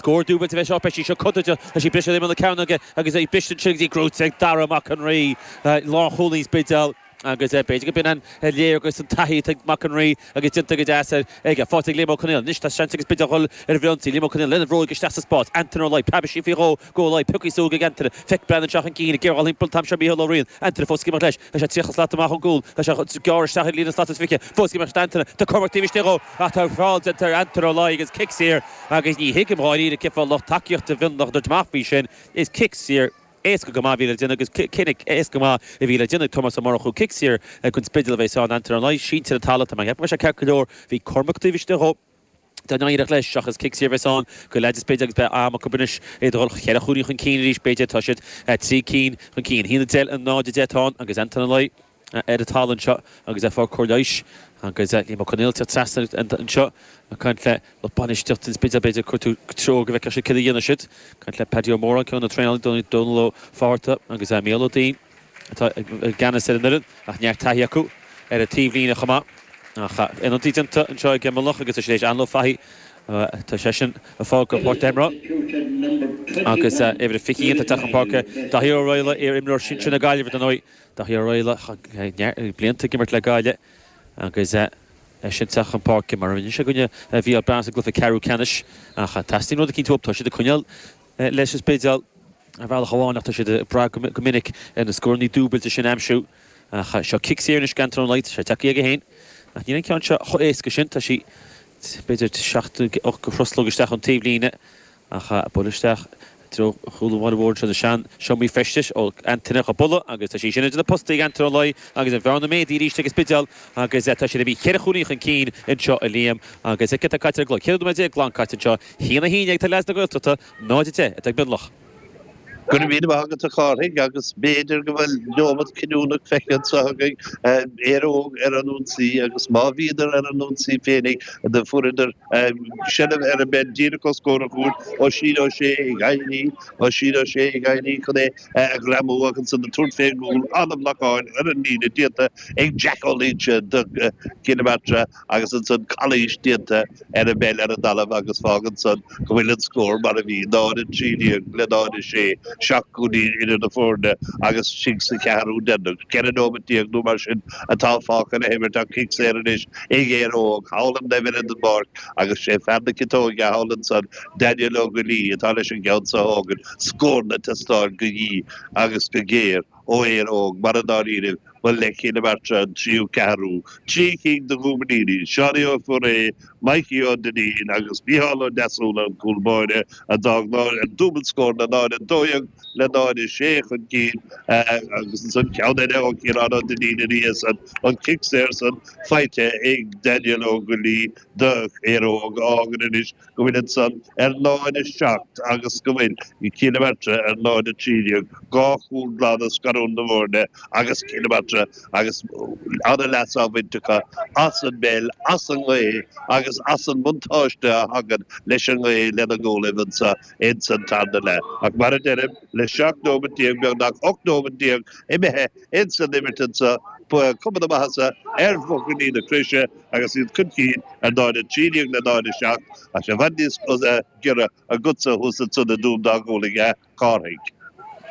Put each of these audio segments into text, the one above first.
Scór dúbailte fé seo, beidh sí seo contúirteach, tá sí ag briseadh imeall na cearnóige agus é ag brisint an tsliogaid go dtí gnóthaithe ag Dara Mac an Rí. Lánchúlaí an Spidéil agus b'fhéidir gurb in léargas ar an taithí atá ag Mac an Rí agus déanta go deas aige. Faighte ag Liam Ó Conghaile. Anois tá seans ag an Spidéal dhul ar an bhfrithionsaí. Liam Ó Conghaile lena bhróig isteach sa spás. Antaine Ó Laoi, preab sí faoi dhó, go Ó Laoi, pioctha suas ag Antaine. É ag breathnú isteach chun cinn ag gearradh thimpeall an t-am seo Micheál Ó Riain. Antaine fós ag imeacht leis. Tá sé tríocha slat amach ón gcúl. Tá sé chun gearradh isteach ag líne slat is fiche. Fós ag imeacht leis Antaine. Tá Cormac taobh istigh dhó ach tá feall déanta ar Antaine Ó Laoi agus cic saor. Agus ní thuigim dháiríre cén fáth lucht tacaíochta Mhionlach ag tabhairt amach faoi sin. Is cic saor éasca go maith a bhí le déanamh agus cinneadh éasca go maith a bhí le déanamh ag Tomás Ó Murchú. Cic saor don Spidéal a bheas ann, Antaine Ó Laoi sínte ar an talamh, tá mé ag ceapadh go mbeidh sé ceart go leor, bhí Cormac taobh istigh dhó. Dá n-éireodh leis, ach is cic saor a bheas ann do leads an Spidéil agus beidh am acu anois iad a dhul cheithre chúilín chun cinn arís b'fhéidir. Tá siad trí cinn chun cinn. Haon a deich, 0-10 atá ann agus Antaine Ó Laoi. ar an talamh anseo agus é ag fáil cóir leighis agus Liam Ó Conghaile tagtha trasna anseo ag caint le lucht bainistíocht an Spidéil b'fhéidir ag cuartú treoir go bhfeicfidh siad céard a dhéanfas siad ag caint le Paddy Ó Móráin ceann de na traenálaithe Dónal Dónal Ó Fátharta agus Mícheál Ó Duinn atá i gceannas ar an fhoireann ach neart taithí acu ar an taobh líne chomh maith ach ionadaíocht déanta anseo ag Mionlach agus is léis Anl Ó Fathaigh tá seisean ag fágáil páirc na himeartha agus uimhir a 21 atá chun páirce Daithí Ó Raghallaigh iar imreoir sinsir na Gaillimhe ar ndóigh. Daithí Ó Raghallaigh blianta ag imirt le Gaillimh agus eisean ag teacht chun páirce mar a rinne sé i gcoinne Bhéal Beann sa gcluiche ceathrú ceannais ach teastaíonn rud eicínt uathu. Tá siad ag coinneáil leis is b'fhéidir ar bhealach amháin ach tá siad ag brath go minic ar na scórannaí dúbailte sin a aimsiú. Ach seo cic saor anois d'Antaine Ó Laoi is, tá sé tagtha chuige féin ach níl an ceann seo chomh héasca sin, tá sí b'fhéidir seacht nó ocht gcroslóg isteach ón taobhlíne. ach é á bualadh isteach i dtreo chúl an bhaile mhóir. Seo na sean seomraí feistis ó Antaine dhá bualadh agus tá sí sin idir na postaí ag Antaine Ó Laoi agus an bhearna méadaithe arís ag an Spidéal agus tá siad ag bhí cheithre chúilín chun cinn anseo a Liam agus céard tá caite ar an gclog? Ceithre nóiméad déag glan caite anseo. Haon a haon déag atá ag leads na Gaeltachta, 0-10 atá ag Mionlach. Go raibh míle maith agat a Chárthaigh agus b'fhéidir go bhfuil neomat cinniúnach feicthe anseo againn, Éire Óg ar an ionsaí agus má bhíodar ar an ionsaí féinig do fuaireadar seilbh ar an bpeil díreach os comhair a gcúil, Oisín Ó Sé ag éirí, Oisín Ó Sé ag éirí chun é a ghreamú ach ansan ag tabhairt fén gcúl, an-bhlocáil ar an líne, déanta ag Jack Ó Loingsigh do Chill na Martra. agus ansan calaois déanta ar an bpeil ar an dtalamh agus fágann san go bhfuil an scór mar a bhí, 0-13 le 0-6, seacht gcúilín idir na foirne agus istigh sa cheathrú deireanach. Ceithre nóimeat déag nó mar sin atá fágtha le himirt ach cic saor anois ag Éire Óg, thall ar an dtaobh eile den bpáirc agus sé fear na ciotóige thall ansan, Daniel Ó Goillí, atá leis an gceann so a thógaint. Scór ag teastáil go dian agus go géar. ó Éire Óg, mar i ndáiríre, ba le Cill na Martra an tríú ceathrú, trí cinn de dhúmainíní, Seánie Ó Foirréidh, Maidhcí Ó Duinnín agus Micheál Ó Deasúna an cúl móire a d'fhág dúbailt scór, a náid a 12 le náid a 6 chun cinn agus ansan ceann eile ó Chiarán Ó Duinnín ina dhiaidh san an cic saor san faighte ag Daniel Ó Goillí do Éire Óg a fhágann anois go bhfuil ansan ar náid a 7 agus go bhfuil Cill na Martra ar náid a 13 dhá chúl glan ag scarúint na bhfoirne agus Cill na Martra agus ana leas á bhaint acu as an, bhuel, as an ngaoth agus as an mbuntáiste a thagann leis an ngaoth lena gcúlaibh anso ins an tarna leath. Ach mar a deirim, le 17 nóimeat beagnach 18 nóimeat imithe ins an imirt anso, tá cuma na maitheasa ar bhuachaillí na Croise agus iad chun cinn ar náid a 13 in aghaidh an náid a 7 is é i bhfad níos giorra agatsa thuas ansan i dTuaim dá Ghualann, a Chárthaigh.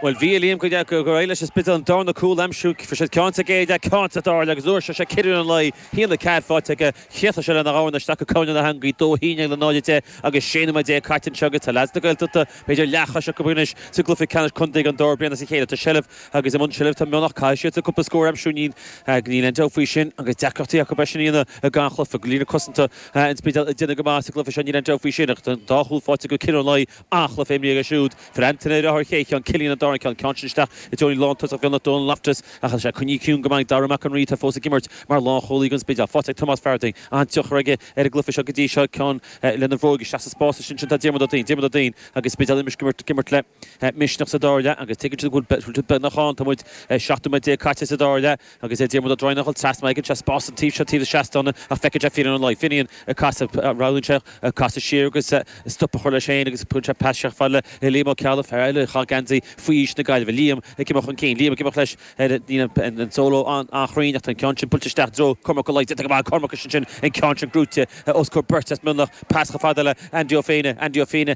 Bhuel, bhí, a Liam, gur éirigh leis an Spidéal an darna cúl a aimsiú, fuair sé ceann sa gcéad leath, ceann sa dara leath agus fuair Cillian Ó Laoi, shíl na cead fáilte aige, chríochnaigh sé lena dhorn isteach go coirnéal na heangaí, 2, 9 le 0, 10 agus 16 nóiméad caite anseo agus tá leaids na Gaeltachta b'fhéidir leathchos acu anois sa gcluiche ceannais contae don dara bliain as a chéile. Tá seilbh. Agus i mbun seilbh tá Mionlach, caillte acu cúpla scór aimsirinín. Níl aon dabht faoi sin. Agus deacrachtaí acu eisean a dhéanamh i gannchluife. Go líne cosanta an Spidéil ag déanamh go maith sa gcluife seo, níl aon dabht faoi sin. Ach an dá chúl fáighte ag clann Uí Laoi, an-chluife imrithe acu siúd. Fuair Antaine an chéad cheann, Cillian an dara ceann. Ceann sin isteach i dtreo lántosach Mhionlach Dónal Loftus. Ach tá sé coinnithe ciúin go maith ag Daire Mac an Rí atá fós ag imirt mar lánchúlaí don Spidéal. Fáighte ag Tomás Farthing. An-tionchar aige ar an gcluife seo go dtí seo. Ceann lena bhróig isteach sa spás. Is ansin tá Diarmuid Ó Duinn. Diarmuid Ó Duinn agus an Spidéal imeasc ag imirt le. misneach sa dara leath agus tuigeann siad go bhfuil siad beagnach ann. Tá muid 17 nóiméad caite sa dara leath agus Diarmuid Ó Droighneáin ceann trasna. Faigheann sé spás an taobh seo taobh na seastán ach feiceann sé Finian Ó Laoi, Finian ag casadh. Roghnaíonn sé casadh siar agus stop a chur leis féin agus tugann sé pas síos fad le Liam Ó Ceallaigh, fear eile a chaith geansaí faoi aois na Gaillimhe. Liam ag imeacht chun cinn. Liam ag imeacht leis. Níl an solo an-chruinn ach tá an ceann sin buailte isteach i dtreo Chormac Ó Laoi, fáighte go maith ag Cormac is ansin an ceann sin brúite os comhair beirt as Mionlach. Pas chomh fada le Andy Ó Féinne. Andy Ó Féinne.